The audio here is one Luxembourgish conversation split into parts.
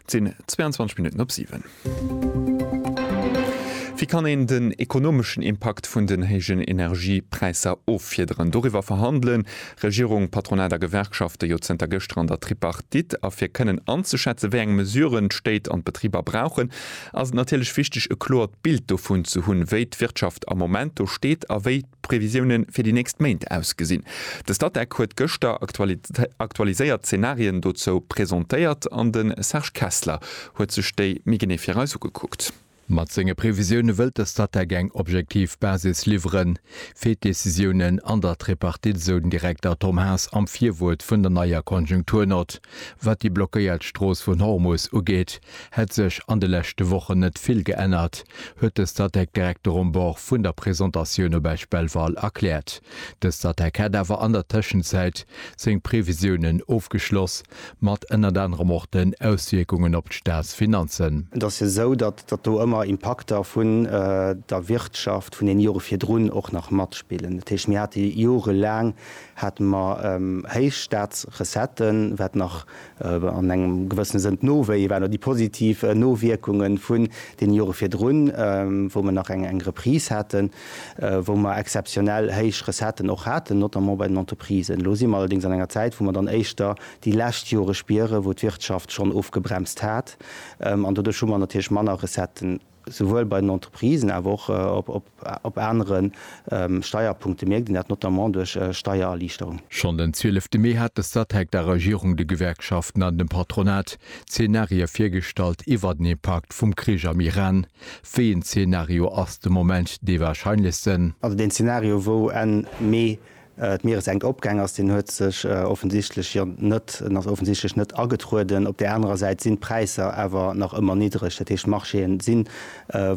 Et sinn 22 Minutten op 7. Wéi kann een den ekonomeschen Impakt vun den héijen Energiepräisser offiederen? Doriwwer verhandele Regierung, Patronat a Gewerkschafte jo zënter gëschter an der Tripartite. A fir kënnen anzeschätzen, wéi eng Mesuren d'Stéit an d'Betriber brauchen, ass et natierlech wichteg, e kloert Bild dovun ze hunn, wéi d'Wirtschaft am Moment do steet a wéi d'Previsioune fir déi nächst Méint ausgesinn. De Statec huet gëschter aktualiséiert Zenarien dozou presentéiert an de Serge Kessler huet sech déi méi genee fir eis ugekuckt. Mat senge Previsioune wëllt de Statec eng objektiv Basis liwwere fir d'Decisiounen an der Tripartite, esou den Direkter Tom Haas am Virwuert vun der neier Konjunkturnott. Wat déi blockéiert Strooss vun Hormus ugeet, hätt sech an de leschte Wochen net vill geännert, huet de Statec Direkter um Bord vun der Presentatioun op Esch Belval erkläert. De Statec hätt awer an der Tëschenzäit seng Previsiounen ofgeschloss, mat ënnert anerem och den Auswierkungen op d'Staatsfinanzen. Et ass jo esou, datt datt do ëmmer Impakter vun der Wirtschaft vun den Jore virdrun och nach matspillen. Dat heescht, mir hate jorelaang hate mer héich Staatsrecetten, wat nach an engem gewëssene Sënn d'Nowéie waren, oder déi positiv Nowierkunge vun deene Jore virdrun, wou mer nach eng Reprise haten, wou mer exzeptionell héich Recetten och haten, notamment bei den Entreprisen. Elo si mer allerdéngs an enger Zäit, wou mer dann éischter déi lescht Jore spieren, wou d'Wirtschaft schonn ofgebremst hat, an doduerch hu mer natierlech manner Recetten. souwuel bei den Entreprisen awer och op anere Steierpunkte mierkt een dat, notamment duerch Steiererliichterung. Schonn den 12 Mee hat de Statec der Regierung, de Gewerkschaften an dem Patronat Zeenarië virgestallt iwwert den Impakt vum Krich am Iran. Wéi een Zeenario ass de Moment dee warscheinlechsten? Also deen Zeenario, wou Enn Mee D'Mieressenkopgäng ass, deen huet sech offensichtlech jo net, en ass offensichtlech net agetrueden. Op där anerer Säit sinn d'Präisser awer nach ëmmer niddreg. Dat heescht, d'Marchéë si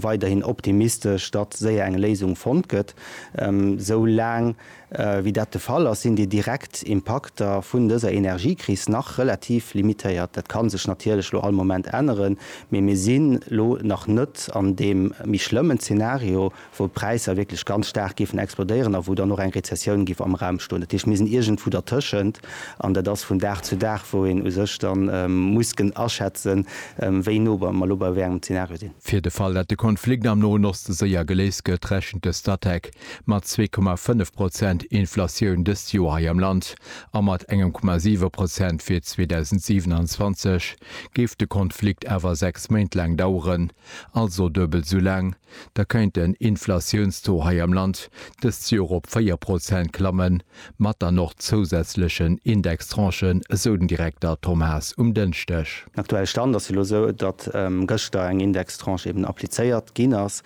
weiderhin optimistesch, datt séier eng Léisung fonnt gëtt. Esou laang wéi dat de Fall ass, sinn déi direkt Impakter vun dëser Energiekris nach relativ limitéiert. Dat ka sech natierlech elo all Moment änneren, mee mir sinn elo nach net an deem méi schlëmmen Zenario wou d'Präisser wierklech ganz staark géifen explodéieren a wou dann och eng Rezessioun géif am Raum stoen. Dat heescht, mir sinn iergendwou dertëschent an dat ass vun Dag zu Dag, wou een u sech da muss kënnen aschätzen, wéi no mer elo bei wéi engem Zenario sinn. Fir de Fall, datt de Konflikt am Noen Oste séier geléist gëtt, rechent de Statec mat zwee Komma fënnef Prozent Inflatioun dëst Joer hei am Land a mat engem Komma siwe Prozent fir 2027. Géif de Konflikt awer sechs Méint laang daueren, Also duebelt esou laang, da kéint den Inflatiounstaux hei am Land dëst Joer op 4 Prozent klammen, mat dann och zousätzlechen Indextranchen, esou den Direkter Tom Haas um Dënschdeg. Den aktuelle Stand ass jo elo esou, datt gëschter eng Indextranche eben applizéiert ginn ass,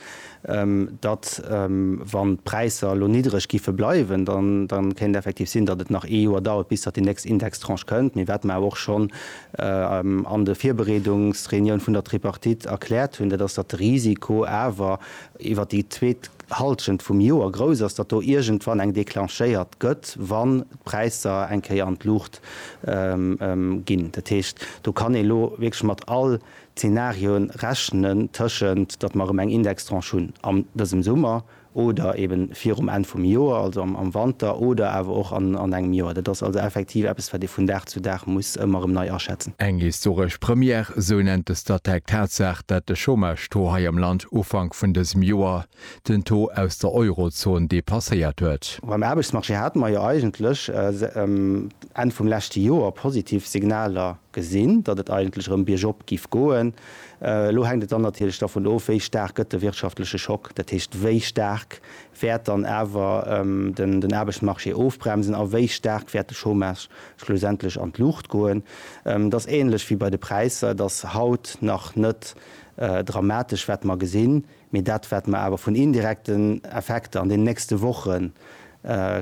datt, wann d'Präisser elo niddreg géife bleiwen, dann kéint et effektiv sinn, datt et nach ee Joer dauert, bis datt déi nächst Indextranche kënnt. Mee wat mer awer och schonn an de Virbereedungsreunioun vun der Tripartite erkläert hunn, dat ass, datt de Risiko awer iwwer déi zweet Halschent vum Joer grouss ass, datt do iergendwann eng declenchéiert gëtt, wann d'Präisser eng Kéier an d'Luucht ginn. Dat heescht, do kann ee lo wierklech mat all Zenarioe rechnen, tëschent datt mer erëm eng Indextranche hunn an dësem Summer, oder ebe virum Enn vum Joer, also am Wanter, oder awer och an engem Joer. Dat ass also effektiv eppes, wat ee vun Dag zu Dag muss ëmmer erëm nei aschätzen. Eng historesch Première, esou nennt de Statec d'Tatsaach, dat de Chômage-Taux hei am Land Ufank vun dësem Joer den Taux aus der Eurozon depasséiert huet. Beim Aarbechtsmarché hate mer jo eigentlech Enn vum leschte Joer positiv Signaler gesinn, datt et eigentlech erëm biergop giff goen. Elo hänkt et dann natierlech dervun of, wéi staark gëtt de wirtschaftleche Schock, dat heescht, wéi staark wäert dann awer den Aarbechtsmarché ofbremsen a wéi staark wäert de Chômage schlussendlech an d'Luucht goen. Et ass änlech wéi bei de Präisser, et ass haut nach net dramatesch, wat mer gesinn. Mee dat wat mer awer vun indirekten Effekter an den nächste Woche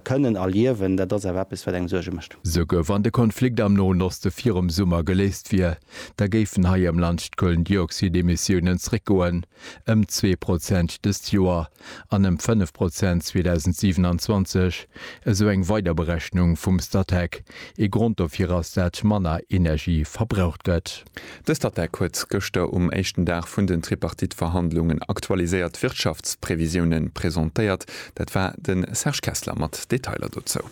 kënnen erliewen, dat ass awer eppes wat engem Suerge mécht. Souguer wann de Konflikt am Noen Oste virum Summer geléist wier, da géifen hei am Land d'Kohlendioxidemissiounen zréckgoen ëm zwee Prozent dëst Joer an ëm fënnef Prozent 2027, esou eng weider Berechnung vum Statec. Ee Grond dofir ass dat manner Energie verbraucht gëtt. Dëst ATTAC huet gëschter um éischten Dag vun den Tripartite-Verhandlungen aktualiséiert Wirtschaftsprevisiounen presentéiert. Dat war de Serge Kessler mat Detailer dozou.